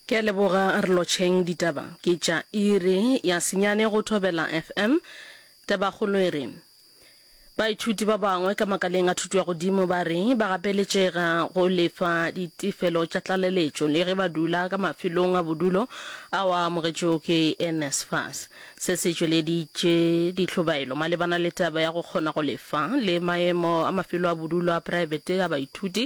Ke a leboga Rlotšheng Ditaba ke tša iri ya senyane go Thobela FM. Tabakgolo e re, Baithuti ba bangwe ka makaleng a thuto ya godimo ba re ba gapeletšega go lefa ditefelo tša tlaleletšo le ge ba dula ka mafelong a bodulo ao a amogetšwego ke NSFAS. Se se tšweleditše ditlhobaelo malebana le taba ya go kgona go lefa le maemo a mafelo a bodulo a praebete a baithuti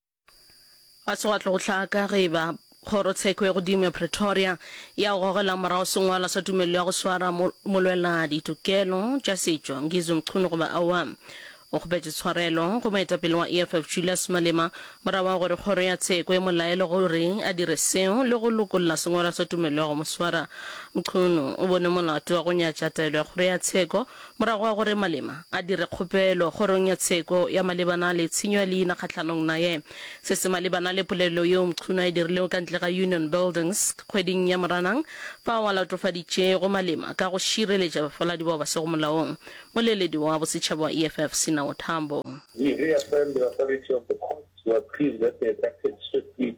Ga se gwa tlo go hlaka ge e ba Kgorotsheko ya Godimo ya Pretoria ya go gogela morago sengwalwa sa tumelelo ya go swara mo, molwela ditokelo tša setšo Ngizwe Mchunu goba aowa. O kgopetše tshwarelo go moetapele wa EFF Julius Malema morago ga gore Kgoro ya Tsheko e mo laele gore a dire seo le go lokolla sengwalwa sa tumelelo ya go mo swara. Mchunu o bone molato wa go nyatša taelo ya Kgoro ya Tsheko Morago ga gore Malema a dire kgopelo Kgorong ya Tsheko ya malebana le tshenyo ya leina kgahlanong naye, se se malebana le polelo yeo Mchunu a e dirilego ka ntle ga Union Buildings kgweding ya Moranang, fao a latofaditšego Malema ka go šireletša bafaladi bao ba sego molaong, moleledi wa bosetšhaba wa EFF, Sinawo Tambo. He reaffirmed the authority of the courts to appeal that they had acted swiftly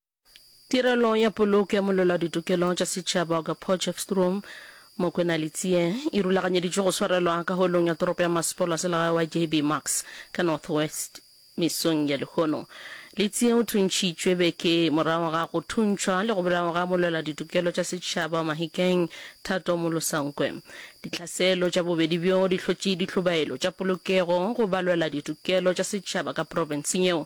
Tirelo ya Poloko ya Molwela Ditokelo tša Setšhaba Auger Potchefstroom Mokwena Letsie e rulaganyeditšwe go swarelwa ka Holong ya Toropo ya Masepolo wa Selegae wa JB Max ka North West mesong ya lehono. Letsie o thuntšhitšwe beke morago ga go thuntšhwa le go bolawa ga molwela ditokelo tša setšhaba wa Mahikeng Thato Molosankwe. Ditlhaselo tša bobedi bjo di hlotše ditlhobaelo tša polokego go balwela ditokelo tša setšhaba ka profenseng yeo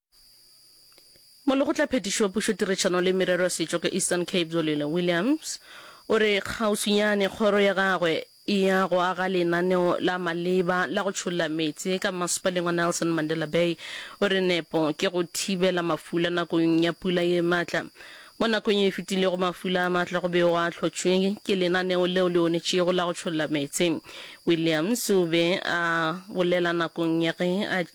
Molekgotlaphetiši wa Pušo, Tirešano le Merero ya Setšo ka Eastern Cape Zolile Williams o re kgauswinyane kgoro ya gagwe e ya go aga lenaneo la maleba la go tšholla meetse ka Mmasepaleng wa Nelson Mandela Bay. O re nepo ke go thibela mafula nakong ya pula ye matla. Mo nakong ye e fetilego mafula a matla go be go a hlotšwe ke lenaneo leo le onetšego la go tšholla meetse. Williams o be a bolela nakong ya ge a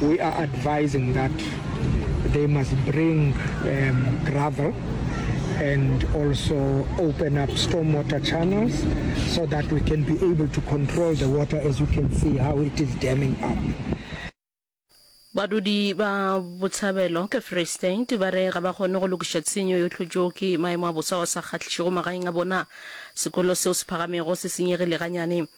We are advising that they must bring um, gravel and also open up stormwater channels so that we can be able to control the water as you can see how it is damming up. badudi ba botshabelo ke free state ba re ga ba kgone go lokiša tshenyo yo tlhotšo ke maemo a bosa wa sa kgahlišego magaeng a bona sekolo seo se phagamego se senyegile ganyane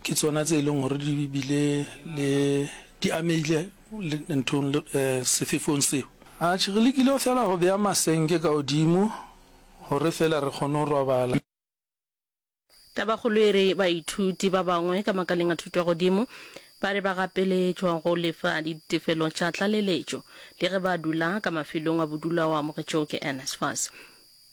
Ke tsona tse e leng gore di bile le di amehile nthong le sefefong seo. Atjhe, re lekile feela go bea masenke ka godimo gore feela re kgone go robala. Tabakgolo e re baithuti ba bangwe ka makaleng a thuto ya godimo ba re ba gapeletšwa go lefa ditefelo tša tlaleletšo le ge ba dula ka mafelong a bodulo ao a amogetšwego ke NSFAS.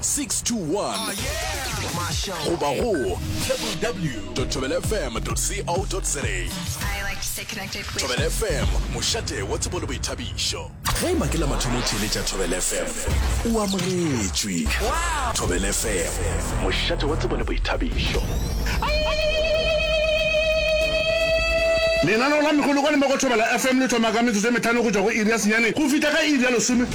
621 goba go www.thobelafm.co.za. Thobela FM, mošate wa tsebo le boithabišo. Ge ema ke la mathomo theeletša Thobela FM, o amogetšwe. Thobela FM, mošate wa tsebo le boithabišo. Lenaneo la megolokwane mo go Thobela FM le thoma ka metsotso e metlhano go tšwa go iri ya senyane go fihla ka iri ya lesome.